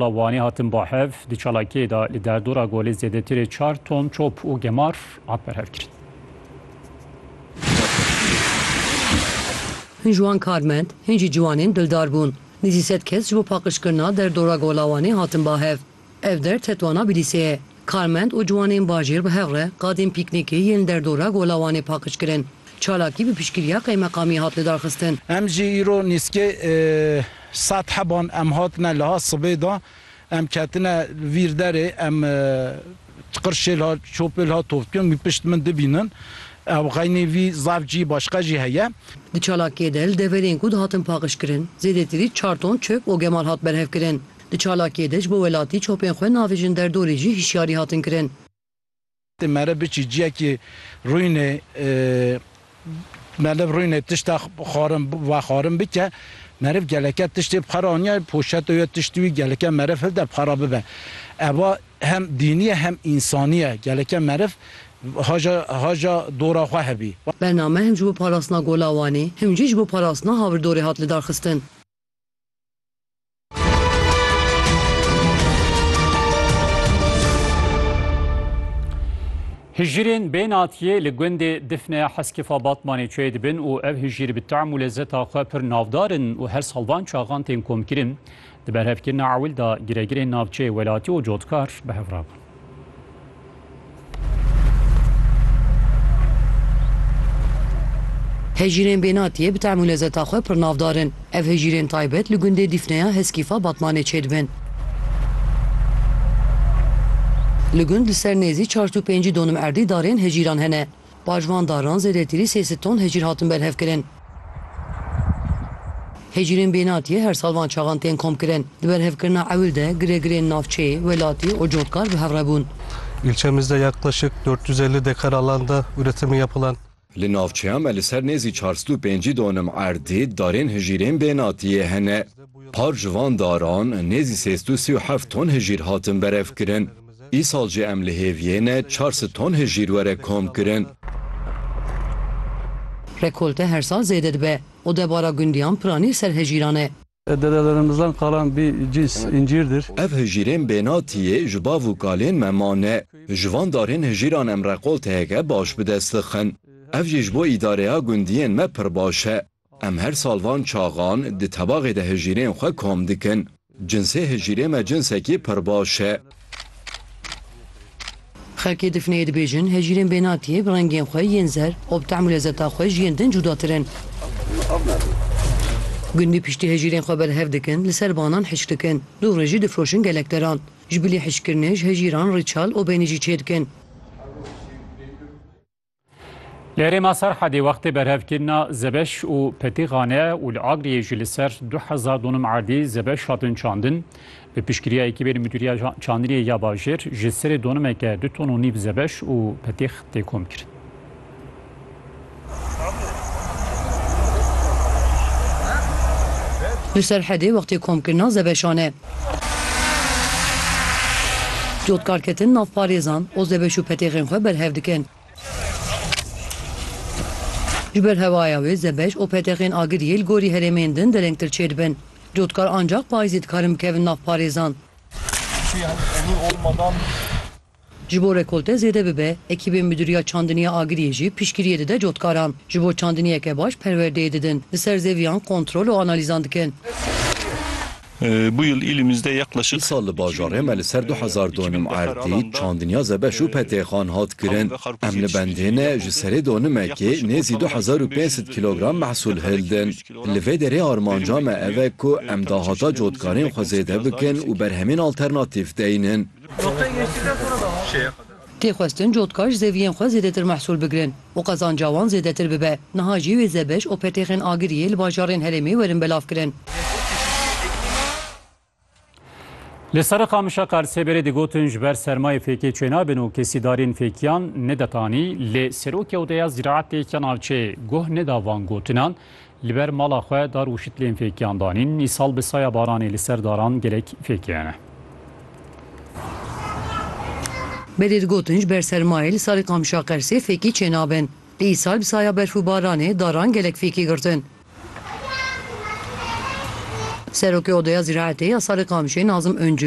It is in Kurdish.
La Wanê hatin bahev di çalakiyê de li derdora golê zêdetirê çar ton top û gemar hat berhevkirin. Hin ji wan karmend, hin jî ciwanên dildar bûn. Nîzî sed kes ji bo paqijkirina derdora gola Wanê hatin bahev. Ev der tetwana Bilîsê ye. Karmend û ciwanên bajêr bi hev re qadên pîknîkê yên li derdora Gola Wanê paqij kirin. Çalakî bi piştgiriya qeymeqamiyê hat lidarxistin. Em jî îro nîskê saet heban em hatine liha sibê de em ketine vîr derê em tiqir şêlha çopêlha tovkirin wî pişt min dibînin ew xeynî vî zaf cî başqa jî heye. Di çalakiyê de li deverên ku dihatin paqij kirin zêdetirî çar ton çöp û gemal hat berhev kirin. Di çalakiyê de ji bo welatî çopên xwe navêjin derdorê jî hişyarî hatin kirin. Ti meriv biçî ciyekî rûynê meriv rûynê tişta xwarin vexwarin bike meriv geleke tiştê bi xwe re aniye poşeto ye tiştî wî geleke meriv hilde bi xwe re bibe eva hem dînî ye hem însanî ye geleke meriv haja haja dora xwe hebî. Bername him ji bo parastina Gola Wanê him jî ji bo parastina havirdorê hat lidarxistin. Hijirên bê natiyê li gundê Difneya Heskifa Batmanê çê dibin û ev hijir bi tam û lezzeta xwe pir navdar in û her sal van çaxan tên komkirin. Di berhevkirina ewil de giregirên navçeyê welatî û cotkar bi hev rabûn. Hejîrên Bênatiyê bi tem û lezeta xwe pir navdar in. Ev hejîrên taybet li gundê Dîfneya Heskîfa Batmanê çêdibin. Li gund li ser nêzî çar tû pêncî donim erdî darên hejîran hene. Paş van daran zêdetirî sê sed ton hecîr hatin berhevkirin. Hecîrên bênatiyê her sal van çaxan tên komkirin. Di berhevkirina ewil de giregirên navçeyê, welatî û cotkar bi hev re bûn. Îlçemizde yaklışık dört yüz elli dekar alanda üretimi yapılan. Li navçeya me li ser nêzî çar sed û pêncî donim erdê darên hicîrên bênatiyê hene. Par ji van daran nêzî sê sed û sî û heft ton hicîr hatin berevkirin. Îsal jî em li hêviyêne çar sed ton hijîr were komkirin. Rekolte her sal zêde dibe û debara gundiyan piranî ser hijîran e. Dedelerimizdan qalan bî cîns încîrdir. Ev hijîrên bênatiyê ji bav û kalên me mane. Ji van darên hijîran em rekolteyeke baş bi dest dixin. Ev jî ji bo îdareya gundiyên me pir baş e. Em her sal van çaxan di tebaxê de hijîrên xwe kom dikin. Cinsê hijîrê me cinsekî pir baş e. Xelkê Difneyê dibêjin, hijîrên bênatiyê bi rengên xwe yên zer û bi tehm û lezeta xwe ji yên din cudatir in. Gundî piştî hijîrên xwe berhev dikin, li ser banan hişk dikin. Dû rê jî difroşin gelek deran. Ji bilî hişkkirinê ji hijîran rîçal û beynî jî çêdikin. Li Herêma Serhedê wextê berhevkirina Zebeş û Petîxane û li Agriyê jî li ser du hezar donum erdî zebeş hatin çandin. Bi piştgiriya ekîbê li Mudîriya Çandiniyê ya Bajêr ji serê donimeke du ton û nîv zebeş û petîx tê komkirin. Li Serhedê wextê komkirina zebeşan e. Cotkarketin navparêzan, OZBŞ û petêxên xwe berhev dikin. Ji ber hewaya wê ZBŞ û petêxên Agiriyê li gorî herêmên din derengtir çêdibin. Cotkar ancax payîzê dikarin bikevin navparêzan. Ji bo rekolte zêde bibe, ekîbên Midûriya Çandiniya Agiriyê jî piştgiriyê dide cotkaran. Ji bo çandiniyeke baş perwerdeyê didin, li ser zêviyan kontrol û analîzan dikin. Bu yıl ilimizde yaklaşık Îsal li bajarê me li ser du hezar donim erdî, çandiniya zebeş û petêxan hat kirin. Em li bendê ne ji serê donimekê nêzî du hezar û pênc sed kîlogram mehsûl hildin. Li vê derê armanca me ev e ku em dahata cotkarên xwe zêde bikin û berhemên alternatîf deynin. Tê xwestin cotka ji zeviyên xwe zêdetir mehsûl bigirin û qezanca wan zêdetir bibe. Niha jî wê zebeş û petêxên agiriyê li bajarên herêmê werin belavkirin. Li Seriqamişa Qarsêberê digotin ji ber sermayê fêkê çênabin û kesîdariyên fêkiyan neditanî, lê Serokê Odeya Ziraetê ya navçeyê guh neda van gotinan, Li ber mala xwe dar û şitlên fêkiyan danîn. Îsal bi saya baranê li ser daran gelek fêkiyane. Belê digotin ji ber sermayê li salê Qamşa-Qersê fêkî çênabin. Îsal bi saya berf û baranê daran gelek fêkî girtin. Serokê Odeya Zîraetê ya salê Qamşê Nazim Uncu,